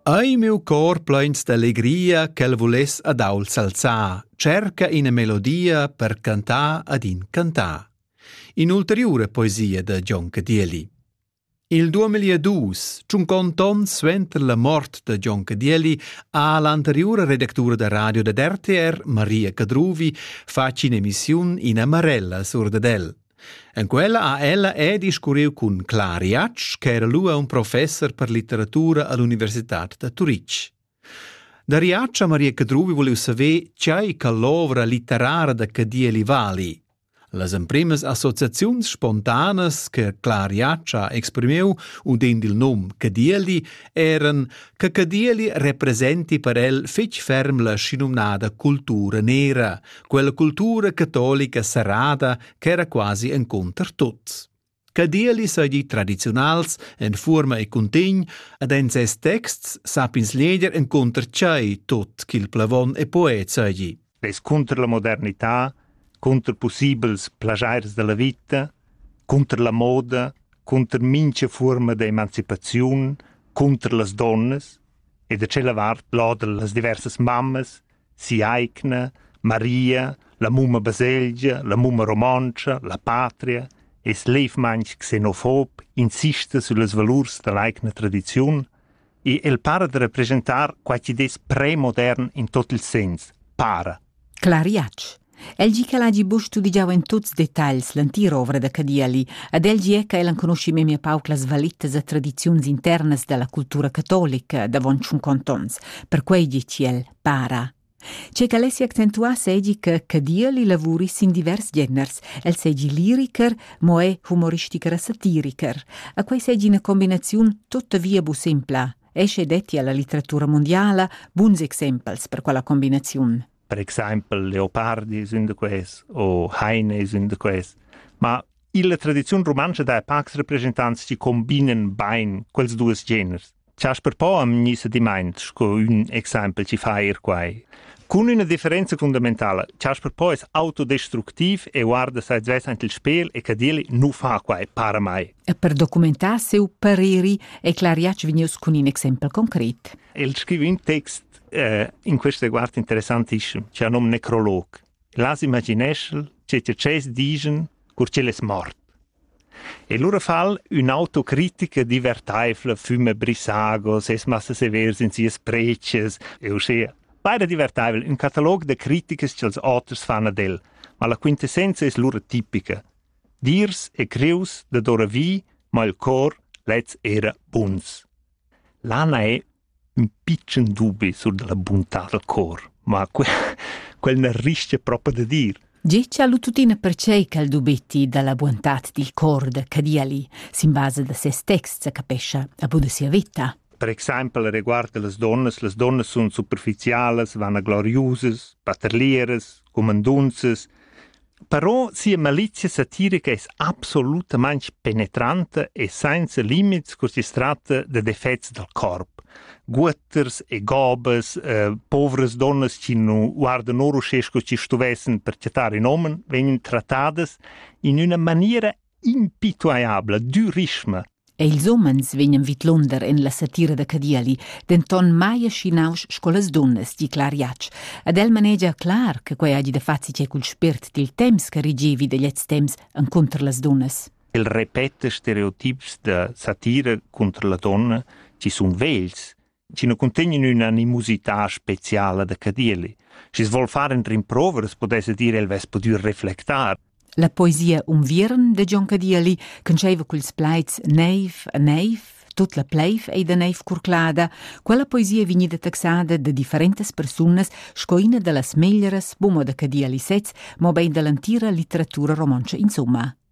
Ei miu cor pleins d'allegria ch'el vuless ad ault s'alzar, cerca ina melodia per cantar ad in cantar. In'ulteriura poesia da Gion Cadieli. Il 2002 tschuncont onn suenter la mort da Gion Cadieli ha l'anteriura redactura da radio dad RTR, Maria Cadruvi, fatg in'emissiun in amarella sur dad el. En quella ha ella er discurriu cun Clara Jatsch ch'era lura un professer per litteratura all'universitad da Turitg. Da Riaccia Maria Cadruvi volev saver tgei che l'ovra litterara da Cadieli vali. Las emprimas associaziuns spontanas che Clara Jatsch ha exprimiu udend il num Cadieli eran che Cadieli representi per el fetg ferm la schinumnada cultura nera, quella cultura catolica serrada ch'era quasi encunter tuts. Cadieli seigi tradiziunals en fuorma e cuntegn ed en ses texts sapins leger encunter tschei tot ch'il plavon e poet seigi. Es cunter la modernità, cunter possibels plagiers della vita, cunter la moda, cunter mincha forma de emancipaziun, cunter las donnas e da cella vart lodel las diversas mammas si'aigna Maria, la mumma baselgia, la mumma romontscha, la patria es levmaing xenofób insista süllas valurs da l'aigna tradiziun e el para da represchentar quai chi'd es premodern in tot il sens, para. Clariatsch. El gi ch'el hagi buc studigiau en tuts detagls l'entira da Cadieli ed el gie che el enconuschi memia pauc las valitas e tradiziuns internas dalla cultura catolica davon tschun contons, perquei gi el para. Che che el si accentuà seigi che Cadieli lavuri sin divers geners, el seigi liriker, mo è humoristiker e satiriker. A quei seigi una combinaziun tuttavia bu simpla. Esce detti alla litteratura mondiala buns exempels per quella combinaziun. per exaimpel leopardi sün de ques o heine sün de ques ma illa tradiziun rumantscha dai pacs representants chi combinen bain quels duos geners Chasper Po am gnisse dimaint sco ün exaimpel chi fa eir quai. Cun üna differenza fundamentala, Chasper Po es autodestructiv e guarda sai svess ant il spel e cadeli nu fa quai para mai. E per documentar seu pareri e clariac vegnius cun ün exempel concret. El scriva ün text eh, in questo guard interessantischem, che num necrolog. Las imagineschel, che te ces digen, cur che les mort. E lura fal un autocritica divertaifla fume brisagos, es massa severs in sias preces, e uscia. Beide divertaivel, un catalog de criticas che els autres fan ad el, ma la quintessenza es lura tipica. Dirs e creus de dora vi, ma il cor lez era buns. Lana è ün pitschen dubi sur da la buntà dal cor, ma que quel n'ha rischia propa da dir. Getgia lu tuttina pertgei ch'el dubetti dalla buontad dil cor da Cadiali sin basa da ses text sa capescha a buna sia veta. Per exempel riguarda las donnas, las donnas sun superficialas, vana gloriusas, paterlieras, cumandunzas, Però sia malizia satirica es absolutamaing penetranta e sainza limits culs chi's tratta da defets dal corp. Guotters e gobas, eh, povras donnas chi nu guardan or uschè sco schi stuvessan per chattar ün uomen, vegnan trattadas in üna maniera impituaiabla dürischma. E ils homens vegnan vidlunder en la satira da Cadiali, denton mai ascinaus sco las dunnas, di Clar Jatsch. Ed el manegia clar che quei hagi da fazi che cul spirt dil temps che rigevi da gliez temps encunter las dunnas. El repeta stereotips da satira contro la donna ci sun vegls chi nu cuntegnan ün'animosità speciala da Cadieli. Schi's voul far entr in prova, as pudessa dir el vess pudü reflectar. La poesia Unviern de Gian Cadieli conscheva culs plaids Neiv a neiv, tut la pleiv ei da neiv curclada, quella poesia vegnida taxada da differentas persunas sco ina da las meglieras bumo da Cadieli sez, mobein dall'entira litteratura romontscha insomma.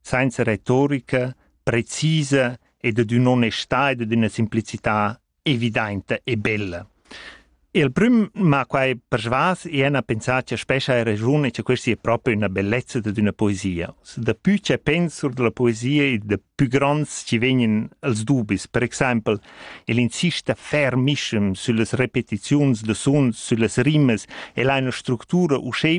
sainza retorica precisa ed ad ün'onestà ed ad üna simplicità evidainta e bella. E il prüm m'ha quai persvas e ena pensà cha spescha hai ragiun e cha questa è proprio una bellezza dad üna poesia. Da pü cha pens sur della poesia e da pü gronds ci vegnan els dubis. Per exaimpel, el insista fermischem süllas repetiziuns da suns, süllas rimas, el ha üna structura uschè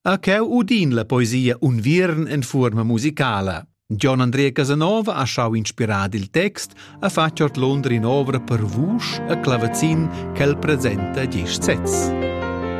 A cheu udin la poesia Unviern en fuorma musicala. Gian Andrea Casanova ha schau inspirar il text, ha fatg ordlunder in'ovra per vusch e clavazin ch'el presenta gest sez.